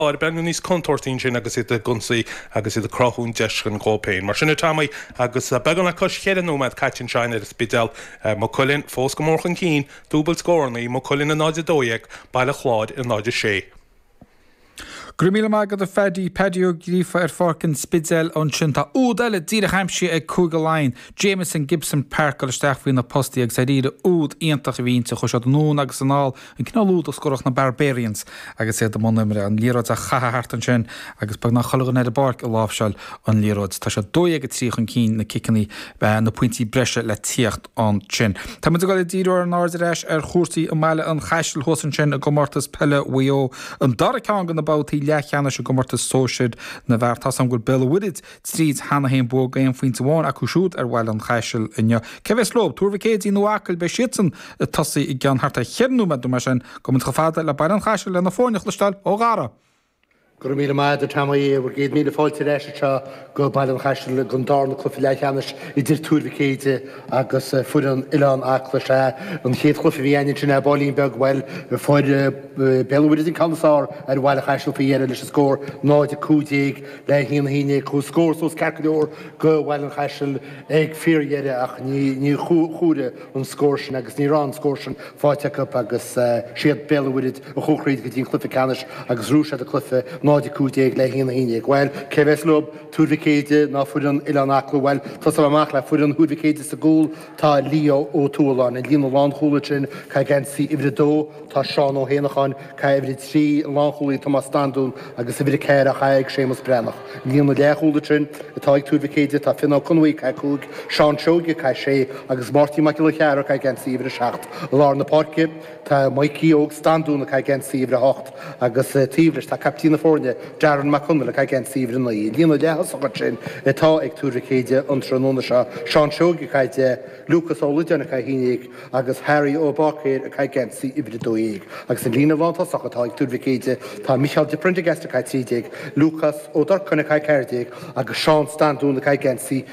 ag breathnú níos contúirtí ansin agus iad ag ionsaí agus iad ag cruthú deiseanna dóibh féin. Mar sin a Tommy, agus beagán le cois cheithre nóiméad caite anseo ar an Spidéal, Maigh Cuilinn fós go mór chun cinn, dúbailt scórannaí, Maigh Cuilinn i 0:12, Baile Chláir i 0:06. Go raibh míle maith agat a Phaddy, Paddy Ó Gríofa ar Pháirc an Spidéil ansin. Tá úd eile díreach aimsithe ag Cúige Laighean, Jamison Gibson-Park dul isteach faoi na postaí agus dáiríre úd iontach a bhí inti chuaigh siad anonn agus anall An cineál úd a scórfadh na Barbarians agus iad i mbun imeartha, an liathróid á chaitheamh thart ansin agus beagnach chuile dhuine ar an bpáirc ag láimhseáil an liathróid. Tá siad 12-3 chun cinn, na ciceanna, na pointí breise le tíocht ansin. Tá muid ag dul ag díriú ár n-aird ar ais ar chúrsaí i mBaile an Chaistil thuas ansin i gComórtas Peile Mhaigh Eo, an dara ceann de na babhtaí leathcheannais i gcomórtas sóisir na bhfear. Tá a fhios againn gur Béal an Mhuirthead tríd cheana féin bua aon phointe amháin acu siúd ar Bhaile an Chaisil inniu. Cé a bheas leo? Tuar Mhic Éadaigh nó Acaill? Beidh siadsan ag tosaí i gceann thart ar cheithre nóiméad nó mar sin gabhfaidh muid chomh fada le Baile an Chaisil le na foirne a chloisteáil ó Dhara. Go raibh míle maith agat a Tommy. Céad míle fáilte ar ais anseo go Baile an Chaisil don dárna cluiche leathcheannais idir Tuar Mhic Éadaigh agus foireann Oileán Acla. Sea, an chéad chluiche a bhí againn ansin, ar baillín beag, bhuel, fuair Béal an Mhuirthead an ceann is fearr ar Bhaile an Chaisil faoi dheireadh leis an scór 0-15. Le 1-11, chuaigh scór suas ceart go leor go Bhaile an Chaisil ag fíordheireadh ach níor chomhair an scór sin agus ní raibh an scór sin faighte acu agus is iad Béal an Mhuirthead a chuaigh thríd go dtí an cluiche ceannais agus bhuaigh siad an cluiche 0-15 le 1-11. Bhuel cé bheas leo? Tuar Mhic Éadaigh nó foireann Oileán Acla? Bhuel tosóidh mé amach le foireann Thuar Mhic Éadaigh sa gcúl. Tá Leo Ó Tuathaláin i líne na lánchúlaithe ansin, ag caitheamh geansaí uimhir a dó, tá Seán Ó hÉanacháin, ag caitheamh uimhir a trí, an lánchúlaí Tomás Standún agus uimhir a ceathair á chaitheamh ag Séamus Breathnach. I líne na leathchúlaithe ansin atá ag Tuar Mhic Éadaigh tá Fionán Conway, ag caitheamh cúig, Seán Seoige, ag caitheamh sé, agus Máirtín Mac Giolla Cheara, ag caitheamh geansaí uimhir a seacht, i lár na páirce. Tá Maidhcí Óg Standún ag caitheamh geansaí uimhir a hocht agus taobh leis tá caiptín na foirne, Darren Mac Conaill ag caitheamh geansaí uimhir a naoi. I líne na leath-thosaithe ansin atá ag Tuar Mhic Éadaigh an tráthnóna seo, Seán Seoige ag caitheamh deich, Lúcás Ó Loideáin ag caitheamh a haon déag agus Harry Ó Báicéir ag caitheamh geansaí uimhir a dó dhéag. Agus i líne lántosach atá ag Tuar Mhic Éadaigh, tá Micheál de Prendergast ag caitheamh trí déag, Lúcás Ó Durcáin ag caitheamh ceathair déag agus Seán Standún ag caitheamh geansaí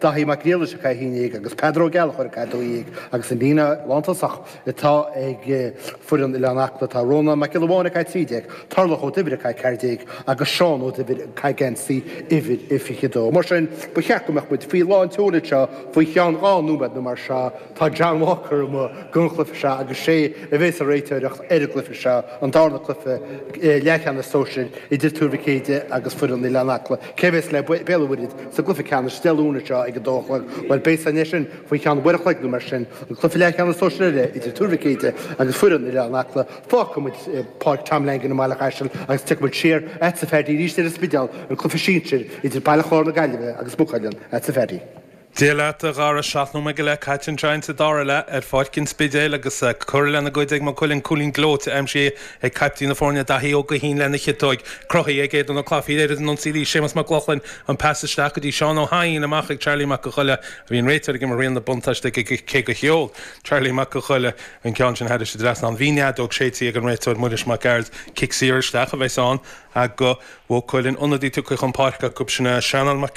Daithí Mac Niallais ag caitheamh 11 agus Peadar Ó Gallchóir ag caitheamh 12 agus an líne lántosach atá ag foireann Oileán Acla tá Rónán Mac Giolla Bháin ag caitheamh 13, Tarlach Ó Duibhir ag caitheamh 14 agus Seán Ó Duibhir ag caitheamh geansaí uimhir 22. Mar sin ba cheart go mbeadh muid faoi lán tseol anseo faoi cheann dhá nóiméad nó mar seo. Tá John Walker amuigh don chluiche seo agus is é a bheas sa réiteoireacht ar an gcluiche seo, an dárna cluiche leathcheannais sóisir idir Tuar Mhic Éide agus foireann Oileán Acla. Cé a bheas le Béal an Mhuirthead sa gcluiche ceannais Dé Luain seo ag a dó a chlog? Bhuel beidh a fhios againn é sin faoi cheann uair a chloig nó mar sin, an cluiche leathcheannais sóisir eile idir Tuar Mhic Éide agus foireann Oileán Acla. Fágfaidh muid Páirc Tom Langan i mBaile an Chaisil agus tiocfaidh muid siar agatsa a Pheaidí arís ar an Spidéal, an cluiche sinsir idir Baile Chláir na Gaillimhe agus Maigh Cuilinn agatsa a Pheaidí. Dia leat, a Dhara. Seacht nóiméad go leith caite ansin sa dara leath ar Pháirc an Spidéil agus curtha lena gcuid ag Maigh Cuilinn. Cúilín gleoite aimsithe ag caiptín na foirne, Daithí Ó Guithín lena chiotóig. Cruthaithe ag Aodán Ó Claifín i lár an ionsaí a bhí Séamus Mac Lochlainn, an pas isteach go dtí Seán Ó hEidhin, amach ag Charlie Mac Coille a bhí an réiteoir ag imirt riail an bhuntáiste aige cé gur sheol Charlie Mac Coille an ceann sin thar an trasnán. Bhí an fheadóg séidte ag an réiteoir Muiris Mac Gearailt. Cic saor isteach a bheas ann do Mhaigh Cuilinn. Ionadaí tugtha chun páirce acu sin Seanán Mac.